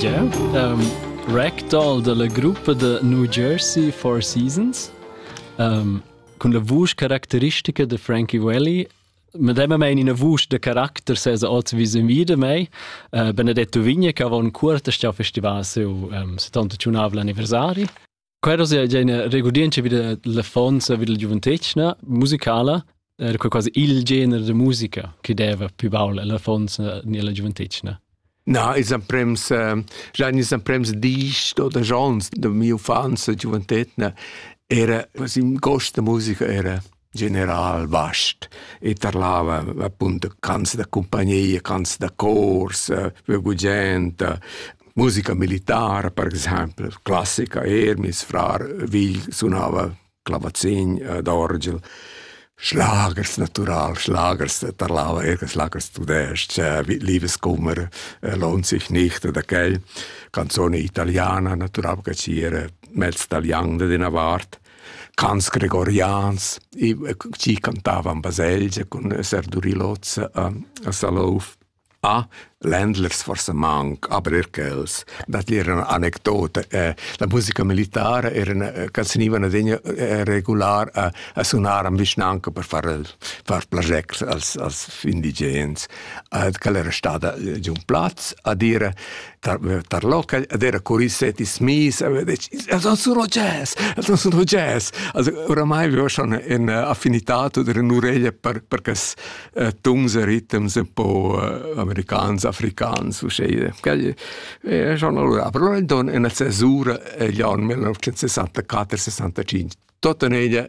Yeah, um, ragdoll dalla gruppa da New Jersey Four Seasons um, cun la vusch caracteristica de Frankie Welly medemma mein ina vusch de caracter sesa oz wie sin wieder mei uh, benedetto vigna che avon cuorta sta festival seu um, 70 anniversari Quero sia gena regurdientscha vid l'affonza vid la giuventetgna musicala era quei quasi il gener de musica che deva più baul l'affonza ni la giuventetgna. Na, ils emprems, uh, già ils emprems dis oder giorns de mia infanzia giuventetgna era, was im Gost der Musiker era. general vast e tarlava appunto canzoni da compagnia, canzoni da cors, buggente, musica militare per esempio, classica er, mis frar Vigl suonava clavazin eh, d'orgel. Schlagers natural, Schlagers tarlava er Schlagers tudest, Liebeskummer eh, lohnt sich nicht oder quel, canzone italiana natural che c'era mezz italiano de una vart Cants gregorians, i chi cantavan baselgia cun esser duri l'hoz a a Salouf. A ländlers forsa manc, aber eir quels. Dat era üna anecdota. Eh, la musica militara era üna ca senivan adegna regular a a sunar in vischnanca per far far plagier als als indigens. Ed quella era stada già ün plaz a dire tar local ed era curiset is mis a vedec els han sun jazz els han sun jazz also oramai vivo schon in affinità oder in ureglia per per cas tuns e ritms un po americans africans uscei quel è schon allora però in don in accesura gli anni 1964 65 tota ella